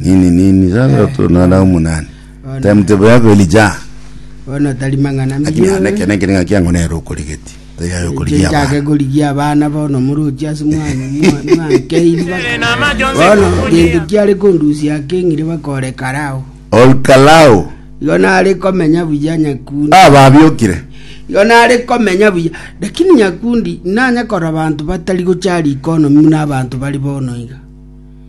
Nini nini sasa Eh, tunana eh. umunani. Ona. Time table yako ilija. bono tari mang'ana Lakini mbiyo ana kene kene ngaki yangu nero okorigeti. Tayari Inche okorigia nchake abana. korigia abana bono muruchi ase mwankeiri bono gento kiare kondusia akeng'ire bakore karao Olkalao. igo nare komenya buya nyakundi Ah babiokire. igo nare komenya buya lakini nyakundi nanye kora bantu batari gochari ikonomi na abanto bari bono iga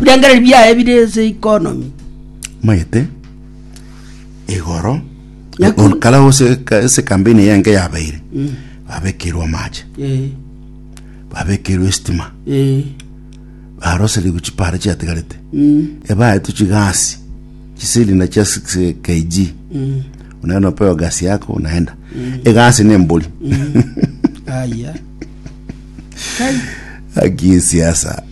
Birengererio biaye bire ense y'economy. Omanyete igoro Nyakuri. kare gose ka- ase campaign eye enke yabeire babekeirwe amache Eh, babekeirwe estima eh, baroserigwe chipara chiatigarete mm, ebaetu chigasi chisilinda chia 6 kg mm. unaenda upewa gasi yako unaenda egasi ni embori Aya. Kai. aki siasa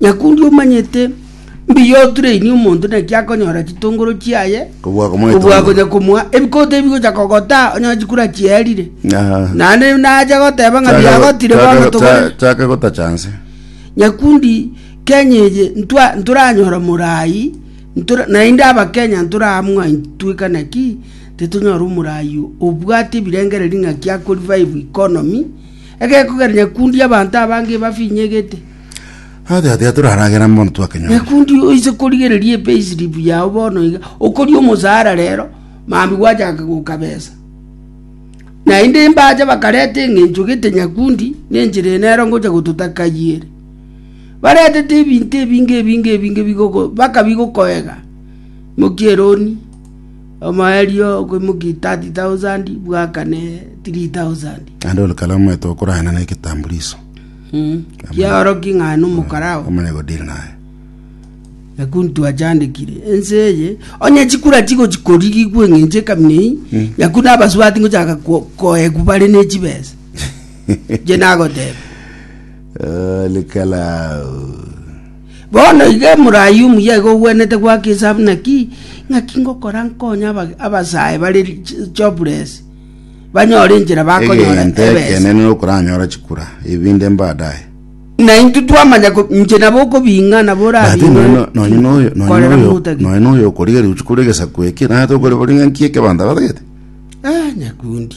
Nyakundi omanyete mbuya otureini omonto naki akonyora chitongoro chiaye, Kobua akomoa kobua etongoro. akonya komoa ebikoto ebi gocha kogotaa onye chikura chiarire. Aha. Naende nacha goteba ng'a Chaka- biagotire bono chaka- togore. cha- chaka gotacha nse Nyakundi Kenya eye ntwa ntoranyora morai ntora naende abakenya ntoramwa ntweka naki titonyora omorai obwate ebirengereri ng'aki ako revive economy Egeku kere nyakundi abanto abange ebafinyegete. Aye taiyo taiyo toraragera mbono twakenyora. Nyakundi oise korigereria epayslip yao bono iga okoria omosaara rero mambia gwachaka gokabesa. Naende mbacha bakareta eng'encho gete nyakundi ne enchera eye nero ngocha gototaka ayio ere. Baretete ebinto ebinge ebinge ebinge bigoko bakabigokoega mokia eroni. Omoerio o koimokia thirty thousand bwakane three thousand. Naende onde kare omanyete okorahena na egetambuliso. Kiaoroki ng'a nomokora oo. Omanye godiri naye. Na kuntu achandekire, ense eye, onye chikura chigochi korigigwa eng'encho ekamina eye, nyaku nabasubati ngochaka ko- koegwa bare ne chibesa. Inche nagoteba. Ole kalao. Bono iga Eburaimu yaiga ogwenerete goaka esabu naki? Naki ngokora nkonye abasae bare jobless banyore enchera bakonyora Egento ebesa. ekenene nokoranyora chikura ebinde mbadaye. Na intwe twamanya ko inche nabo okobinga nabo But orabinge nonya no- nonya noyo nonya korera noyo motagete. nonya noyo okorigeria gochia kore egesaku eke naye tokore kore ng'a nki ekebanto abatagete Eh, nyakundi.